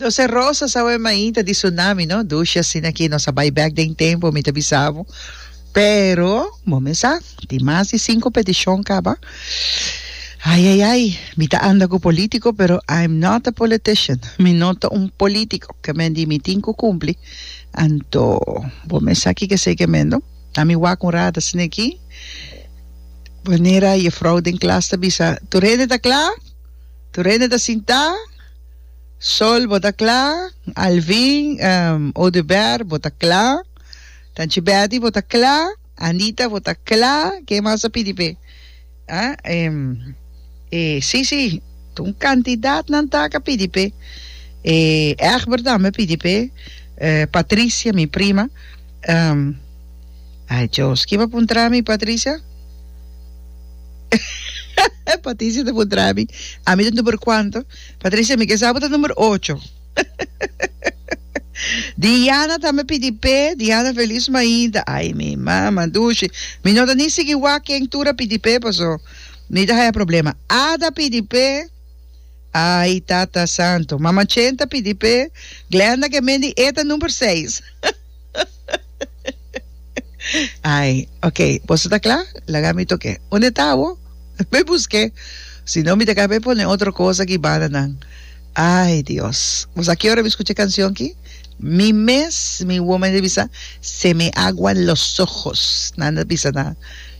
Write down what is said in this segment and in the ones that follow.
Nos e rosa sa we mainta di tsunami no dushi asina ki nos a bai bek den tempo mi ta bisa bo pero bo me sa tin mas di sinku peticion kaba ai ai ai mi ta anda ku politico pero I'm not a politician mi no ta un politico ke men di mi tin ku kumpli anto bo me sa kiko esei ke men do a mi wak un rat asina ki manera jefrouw den klas ta bisa tur hende ta kla Turene ta sintá, Sol bo ta kla, Alvin, ehm, Oduber bo ta kla, Tanchi Betty bo ta kla, Anita bo ta kla, ken mas ta pidi pe? Ah, ehm, e, si, si, ta un kantidat nan tak a pidi pe, e, Egbert tambe a pidi pe, eh, Patricia, mi prima, ehm. Ay Djos, ki pa puntra mi Patricia? Paticia ta puntra mi, ami ta number cuanto? Patricia, mi ke sa bo ta number ocho. Diana tambe pidi pe, Diana Feliz mainta, ay mi mama dushi, mi no ta ni sigui wak ken tur a pidi pe paso mi ta haya problema. Ada pidi pe, ay Tata Santo. Mama Chen ta pidi pe, Glenda ke mendi e ta number seis. Ai, ok, boso ta kla? Laga mi toke. Unde ta abo? Mi buske. Si no, mi ta ka be pone otro cosa aki bananan. Ai, Dios. Boso a ki ora mi skucha e kansion ki? Mi mes, mi woman ta bisa, se me aguan los ojos. Nan ta bisa na,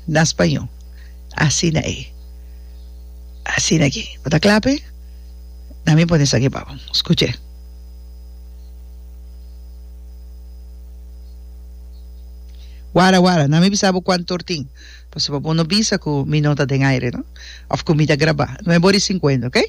na spañó. Asina ei. Asina ki. Bo ta kla pe? Na mi pone esaki pa bo. Skuch'é. Wara, wara, na mi bisa bo cuanto or tin, pasobra bo no bisa cu mi no ta den aire, no? Of cu mi ta graba. No e bor di cincuenta, ok?